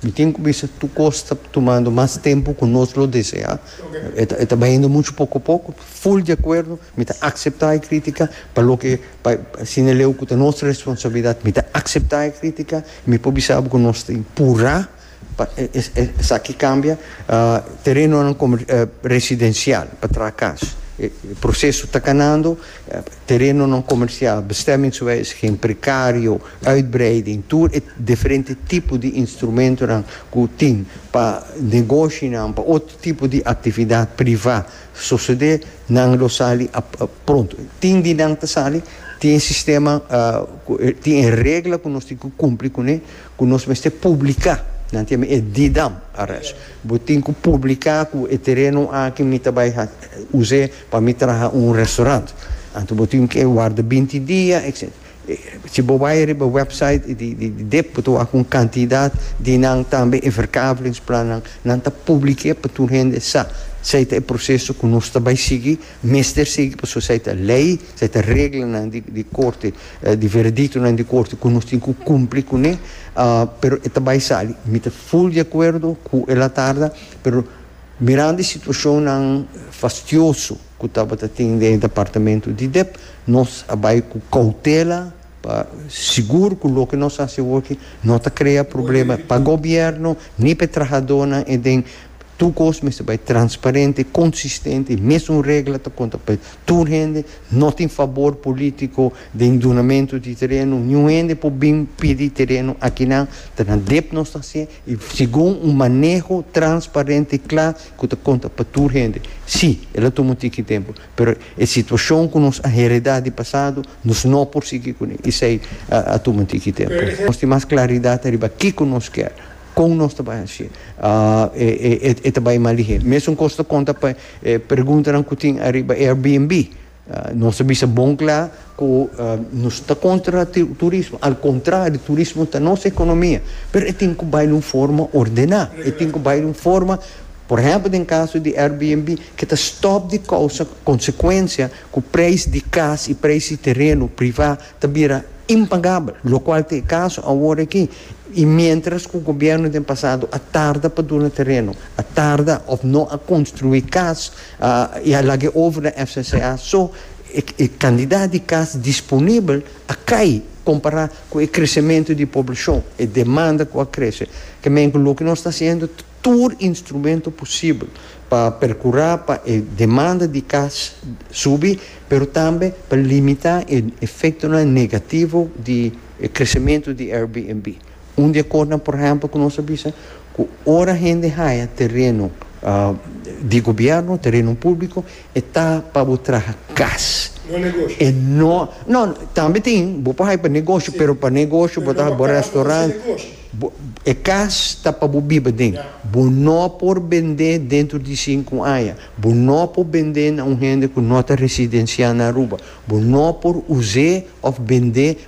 Mi tin cu bisa tur cos ta tumando mas tempo cu nos lo desea. E ta bayendo mucho poco poco. Full di acuerdo. Mi ta acepta e critica pa loke pa asina leu cu ta nos responsabilidad. Mi ta acepta e critica y mi por bisa bo cu nos tin pura pa esaki cambia terenonan residencial pa traha cas. E proceso ta canando. Terenonan komersial, bestemmingswes, geen prekario, uitbreiding, tur e diferente tipo di instrumentonan ku tin pa negoshinan, pa otro tipo di aktividat privá sosodé, nan lo sali pronto. Tin di nan ta sali, tin e sistema, tin e regla ku nos tin ku kumpli kuné, ku nos mester publiká, nan ta yama e Didam ares. Bo tin ku publiká ku e tereno aki mi ta bai us'é. Pa mi traha un restaurant, anto bo tin ke warda binti dia, etc. Si bo bai riba website di dep bo ta wak un kantidat di nan tambe e verkavelingsplannan, nan ta publike pa tur hende sa. Sai ta e proseso ku nos ta bai sigui, mester sigui pasobra sai ta lei, sai ta reglanan di korte, di verediktonan di korte ku nos tin ku kumpli kuné, pero e ta bai sali. Mi ta full di akuerdo ku el a tarda, pero. Mirando e situacionnan fastioso cu tabata tin den e Departamento di Dep, nos a bay cu cautela pa sigur cu loke nos a haci awor aki no ta crea problema pa Gobierno ni pa e trahadornan en den tur cos mester bay transparente, consistente, mesun regla ta conta pa tur hende, no tin fabor politico den dunamento di tereno, niun hende por bin pidi tereno, akinan ta na Dep nos ta haci. y segun un maneho transparente y cla cu ta conta pa tur hende. Si, el a tuma un tiki tempo, pero e situacion cu nos a hereda di pasado nos no por sigui cu ne, esey a tuma un tiki tempo. Nos tin mas claridad ariba kico nos kier, con nos ta bay haci e ta bay malihé. Mesun cos ta conta pa e preguntanan cu tin ariba Airbnb. Nos a bisa bon kla ku nos ta kontra turismo. Al kontrario, turismo ta nos ekonomia. Pero e tin ku bai na un forma ordená. E tin ku bai na un forma, por ehèmpel den kaso di Airbnb, ke ta stòp di kousa konsekuensia ku preis di kas i preis di tereno privá ta bira impagabel, lokual ta e kaso awor aki. I miéntras ku gobièrnu den pasado a tarda pa duna tereno, a tarda òf no a konstruí kas, I a lag'é over na FCCA, so e kandidat di kas disponibel a kai kompará ku e kresementu di poblashon, e demanda ku a krese. Kemenku loke nos ta hasiendo ta tur instrumento posibel pa perkurá pa e demanda di kas subi, pero tambe pa limitá e efektonan negativo di e kresementu di Airbnb. Un di e kosnan por ehempel ku nos a bisa ku ora hende haya tereno di gobièrnu, tereno públiko, e ta pa bo traha kas. No negoshi. E no, no, tambe tin, bo por haya pa negoshi, pero pa negoshi bo ta haya bo restaurant, bo, e kas ta pa bo biba den. Bo no por bend'é dentro di sinku aña, bo no por bend'é na un hende ku no ta residensiá na Aruba, bo no por us'é òf bend'é.